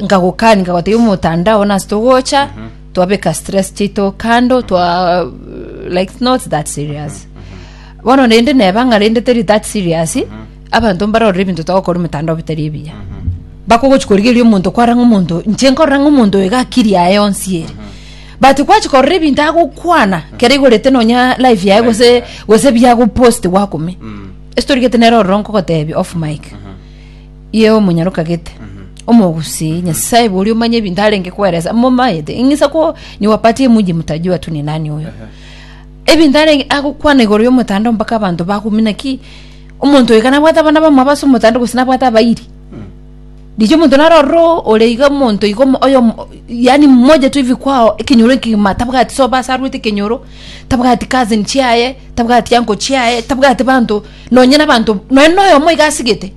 nkagokani nkagotebia omotandao nase togocha twabeka stress chiaito kando twa like not that serious bono rende neba ng'a rende teri that serious abanto mbarore ebinto togokora omotandao bitari ebiya bakogochi korigereria omonto kwara ng'a omonto oyo inche nkorora ng'a omonto oyo iga akiri yaye yonsi ere but gwachi korora ebinto agokwana kere igorete nonya live yaye gose gose biagopost gwakome ase torigete nere ororo nkogotebia off mic ye omonyarokagete omogusi nyasaye bori omanye ebinto arenge kweresa momayete ing'isa ko niwapatie muji mtaji watu ni nani oyo ebinto arenge agokwana igoro y'omotanda mpaka abanto bagumina ki omonto oyo kana bwata abana bamwe abase omotanda gose nabwate abairi richa omonto naro ororo ore iga omonto iga omo- oyo omo- yaani mmoja tu hivi kwao ekenyoro ekegima tabwati soba ase arwete ekenyoro tabwati cousin chiaye tabwati uncle chiaye tabwati banto Nonye nabanto, nonye noyomo iga asigete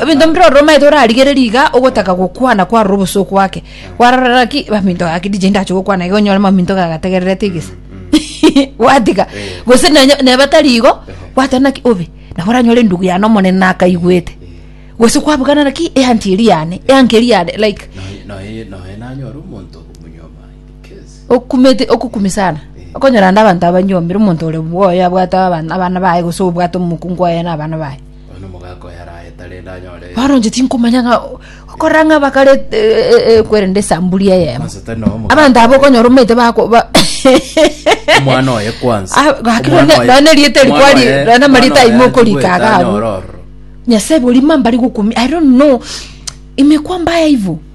ebinto mbire ororo omaete orarigererie iga ogotaka eh. gokwana kwarora obosoo kwake kwarora ki maminto gake dije ndache gokwana iga onyore maminto gagategererete egesa mm, mm. gwatiga eh. gose nebatari igo eh. gwateba naki obe nabo oranyore endugu yane omonene nakaigwete gose kwabugana naki eanti eri yane eanka eri yane like noe noe nanyore omonto okumete okokumi sana okonyora naende abanto abanyombire omonto ore bwoye abwate abana abana baye gose obwate omokungu oye na abana baye Bono omogaka oyo araete rende anyore bono inche tinkomanya ng'a okorora ng'a bakare ekwerende esambuli eyemo Kwanza tari nao omogaka abanto aba okonyora omanyete bako ba omwana oye kwanza Ah, gaki Omwana none- oye- none rieta omwana rikwari- oye- none amarieta omwana oye aimo okorika atigwete agabu. anyore ororo. nyasae bori mambari gokumi i don't know imekuwa mbaya hivo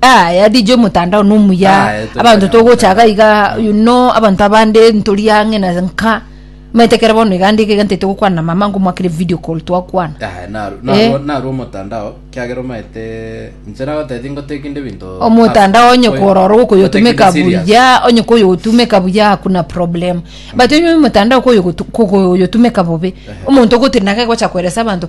Ah, ya DJ mutandao nomuya Ah, eh, tuli abanto kanya togochaga iga you know abanto abande ntori ang'e na nka maete kere bono iga ndike iga ntete gokwana na mama ngomwakere video call twakwana Ah, naru- Eh. naru- naru omotandao kiagera omaete inche nagoteti ngoteki inde binto omotandao onye Oyo- korora okoyotumeka ngoteki inde serious. buya onye koyotumeka buya hakuna problem but onye omotandao koyogotu- kogoyotumeka bobe omonto ogotiri nake gocha kweresa abanto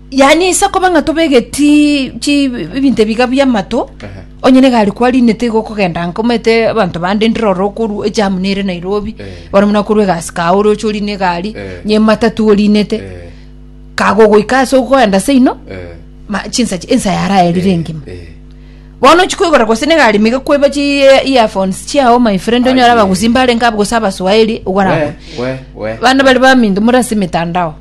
Yaani ase okoba ng'a tobegeti chi ebinto ebiga bi'amato, Ehe. onye nigo aria kwari nigo tiga okogenda nka omanyete abanto bande ndire ororo okorwa ejamu nere Nairobi, Eh. bono buna okorwa egasi kago ore oche orine egari, Eh. onye ematatu orinete, Eh, kago ogoika ase ogoenda seino, eh, ma- chinsa chi- ensa yaraerire engima. eh. bono ochia koigora gose na egari mega kweba chi eh, earphones chiao my friend onyore Aye. abagusimba arenge abe gose abaswahili ogwaragwe We, we, we. bana bari baminto muri ase emetandao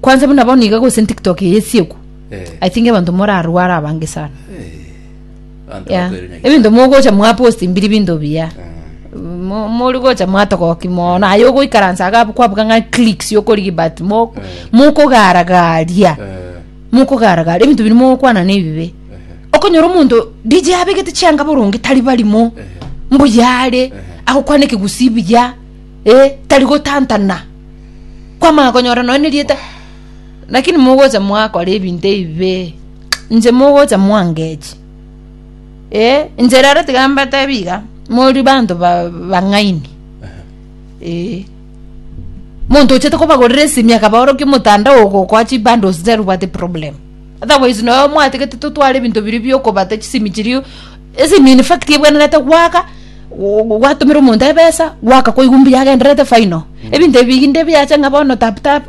Kwanza buna bono iga gose tiktok eye esiekwa Eh. i think abanto morarware abange sana Abanto Yeah. bakoirwe nyaki- ebinto mogocha mwaposti mbiri binto biya Ah. Mo- mori gocha mwatogoki mono aye ogoikaransa aga kwabuga ng'a clicks yokorigi but mo- Eh. mokogaragaria Eh. mokogaragaria ebinto biri mogokwana nebibe Eh. okonyora omonto dj abegete chianga boronge tari barimo Eh. mbuyare agokwana ekegusii buya eh, tari gotantana kwamanya konyora nonya nerieta lakini mogocha mwakora ebinto ebibe inche mogocha mwangechi eh inche rero tiga mbatebi iga mori banto ba- bang'aini eh monto ochete kobagorera esimi akabaorokia omotandao ogokoa chibundles tari obwate problem otherwise nonya mwatagete totware ebinto biria biokobata chisimi chiria As in in fact ebwenerete goaka go- gwatomera omonto ebesa goaka koigwa mbuya agendererete final ebinto ebi binde biache ng'a bono tap tap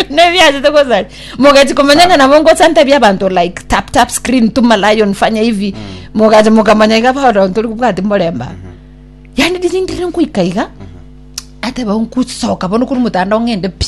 nebiachete gosaria mogachia komenya ng'a nabo ngosanta ebi abanto like tap tap screen tuma lion fanya hivi mogacha mokamanya iga bono ntori kobwati morembe aba yaani riria ndire ngoika iga ateba nkusoka bono korwa omotandao ng'ende pi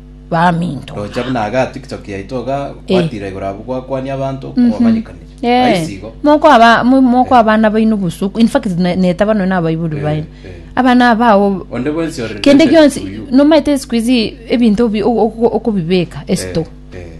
baminto. Roche buna aga TikTok yaito iga Eh. gwatira igoro abwo gwakwania abanto kwabanyekanire. Eh, Aisi igo. mokwaba mo- mokwaba abana baino busuku in fact ne- netaba nonya abaibori Eh, baino eh. abana abao Onde bwensi ore kende related gionsi to you. nomaete sikuizi ebinto bi- o- o- okobibeka esito Eh, eh.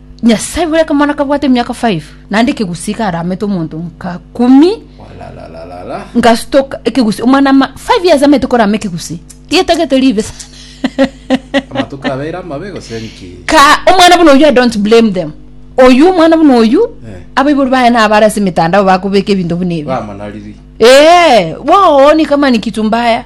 Nyasae bore akamwana kabwate emiaka 5 naende ekegusi karamete omonto nka kumi Walalalala. ngasutoka ekegusi omwana ma 5 years amete korama ekegusi getagete ribe sana Amatuko abeire amabe gose nki? ka omwana buna oyu i don't blame them oyu omwana buna oyu Eh. abaibori baye nabare ase emitandao bakobeka ebinto buna ebi Bamanariri. ee booni kama ni kitu mbaya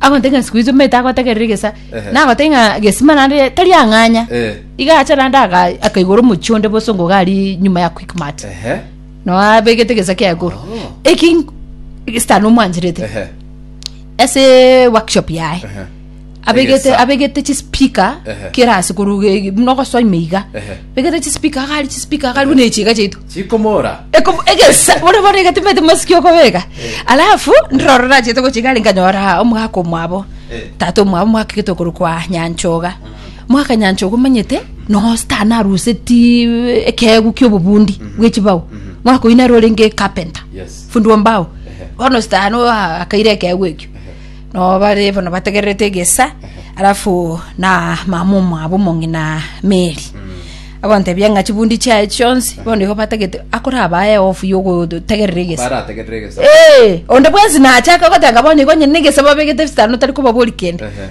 agontaki ng'a sikuizi omanyete agotegerera egesa Ehe. nagotaki ng'a gesima naende tari ang'anya Eh. iga acha naende aga- akaigora omochie onde bosongo iga aria nyuma ya quickmart Ehe. no abegete egesa kia igoro Oh. eki sitani omwancherete Ehe. ase workshop yaye Ehe. abegete Egesa. abegete chispeaker Ehe. kera ase koruga egi- buna ogosoima iga Ehe. Egete chisipika iga aria, chisipika iga aria, buna echiga chiaito. Chikomora. Eko- egesa bono bono egatimete masiki okobeka alafu ndiro rorachete gochia igare nkanyora omogaka omwabo Eh. tata omwabo omogaka getokorokwa nyanchoga mogaka nyanchoga omanyete nogositana aruseti ekeegu kia obobundi bwe chibao mogaka oyio nere orenge carpenter Yes. fundi wa mbao Ehe. bono sitano akaire ekeegu ekio Nao bare bono bategererete egesa, alafu na mama omwabo omong'ina Meri agontebia ng'a chibundi chiaye chionsi bono igo batagete akorabae ofu yogotegerera egesa barategerera egesa Eh, onde bwensi nachaka gotanga bono igo nyene egesa babegete bisitano tari kobabori kende Ehe.